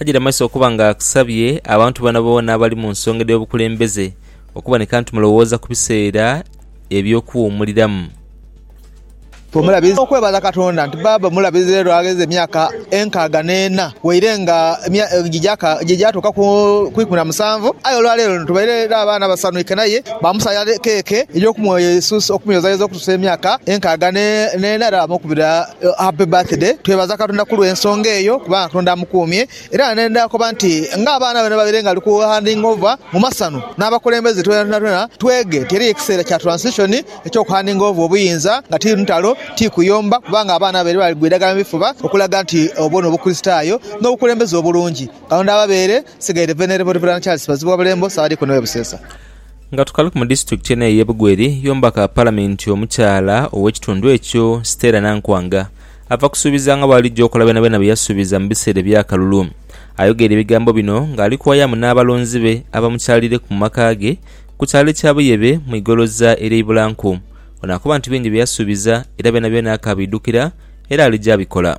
Ajaire amaiso okuba nga akusabye abantu boonaboona abali mu nsonga edh'obukulembeze okuboneka nti mulowooza ku biseera eby'okuwuumuliramu. Bw'omulabiriza okwebala Katonda nti bbaabwe omulabirizi leero agheza emyaka enkaaga n'ena waire nga gy'egyatuuka ku ikumi na musanvu aye olwaleero tubaire n'abaana abasanhuike naye baamusala keeke ey'okumweyozaayoza okutuusa emyaka enkaaga n'ena era baamukubira Happy birthday twebaza katonda kulwensonga eyo kubanga katonda amukumye era nendha koba nti nga abaana be nabaire nga bali ku handing over mumasanu nabakulembeze twena twege nti eriyo ekiseera kya transition ekyo ku handing over obuyinza nga ti ntalo ti kuyomba kubanga abaana babaire bali kwidagala mubifuba okulaga nti obwo nobukulisitayo nobukulembeze obulungi katonda ababeere nsigaire Venerable Rev Charles Bazibuwabulembo Ssaabadiikoni we Buseesa. Nga tukali ku mu disitulikiti eno ey'e Bugweri, y'omubaka Palamenti omukyala ow'ekitundu ekyo, Stella Nankwanga, ava kusuubiza nga bw'alijja okola byonabyona bye yasuubiza mu biseera eby'akalulu. Ayogeire ebigambo bino ng'ali kuwayamu n'abalonzi be abamukyalireku mu maka ge ku kyalo ekya Buyebe mu igoloza ery'e Ibulanku. Ono akoba nti bingi bye yasuubiza era byonabyona akaabiidhukira era alija abikola.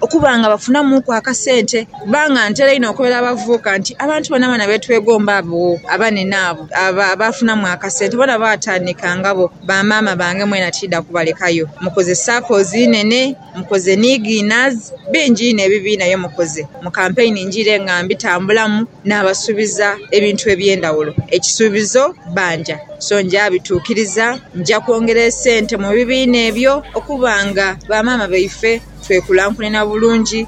okuba nga bafunamuuku akasente kubanga ntera inho okobera abavubuka nti abantu boonaboona be twegomba abo abanene abo abaafunamu akasente boona baatandika nga bo ba maama bange mwena tiidha kubalekayo. Mukoze sakozi inhenhe, mukoze ni ghinazi, bingi inho ebibiina bye mukoze mu kampeyini njiire nga mbitambulamu naabasuubiza ebintu eby'endhaghulo. Ekisuubizo bbanja so nja bituukiriza, nja kwongera esente mu bibiina ebyo okuba nga ba maama baife. twekulankulanha bulungi.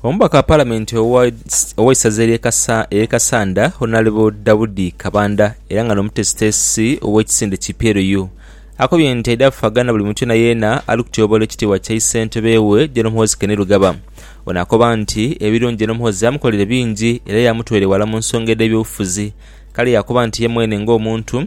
Omubaka wa Palamenti ow'eisaza ery'e Kassanda, Honourable Daudi Kabanda era nga n'omuteesiteesi ow'ekisinde ki PLU akobye nti aidha kufaagana buli muntu yeenayeena ali kutyoboola ekitiibwa kya Issentebe we Gen Muhoozi Kainerugaba. Ono akoba nti ebirungi Gen Muhoozi yamukolere bingi era yamutwala eghala mu nsonga edh'ebyobufuzi kale yaakoba nti ye mwene ng'omuntu,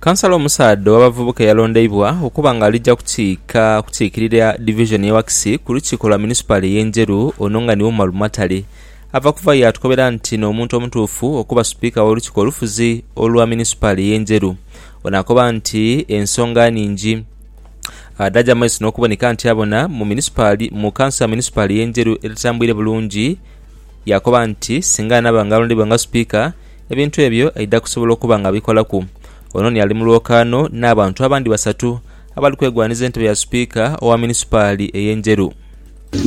Kansala omusaadha ow'abavubuka eyalondeibwa okuba nga alija kukiika kukiikirira divizoni y'e Wakisi ku lukiiko lwa munisipaali ey'e Njeru ono nga niwe Umaru Matale ava kuva yatukobera nti n'omuntu omutuufu okuba Sipiika w'olukiiko olufuzi olwa munisipaali ey'e Njeru. Ono akoba nti ensonga nhingi dhaja mu maiso n'okuboneka nti abona mu munisipaali mu kanso ya munisipaali ey'e Njeru etatambuire bulungi yakoba nti singa anaaba nga alondeibwa nga Sipiika Ebintu ebyo aidha kusobola okuba nga abikolaku ono ni ali mu lwokaano n'abantu abandi basatu abali kwegwanhiza entebe ya Sipiika owa munisipaali ey'e Njeru.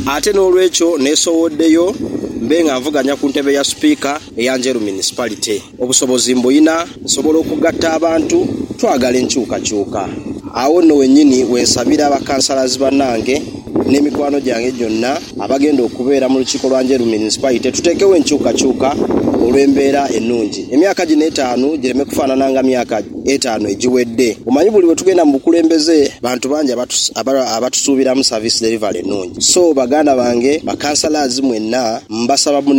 Ate n'olwekyo neesowoddeyo mbe nga nvuganya ku ntebe ya Sipiika eya Njeru Municipality. Obusobozi mbulina, nsobola okugatta abantu, twagala enkyukakyuka. Agho nno wennyini we nsabira bakansalazi bannange N'emikwano gyange gyonna abagenda okubeera mu lukiiko lwa Njeru Munisipaite tuteekewo enkyukakyuka olw'embeera ennungi emyaka gino etaanu gireme kufaanana nga myaka etaanu egiwedde. Omanyi buli lwe tugenda mu bukulembeze bantu bangi abatusuubiramu service delivery ennungi so baganda bange ba councillors mwenna mbasaba mune.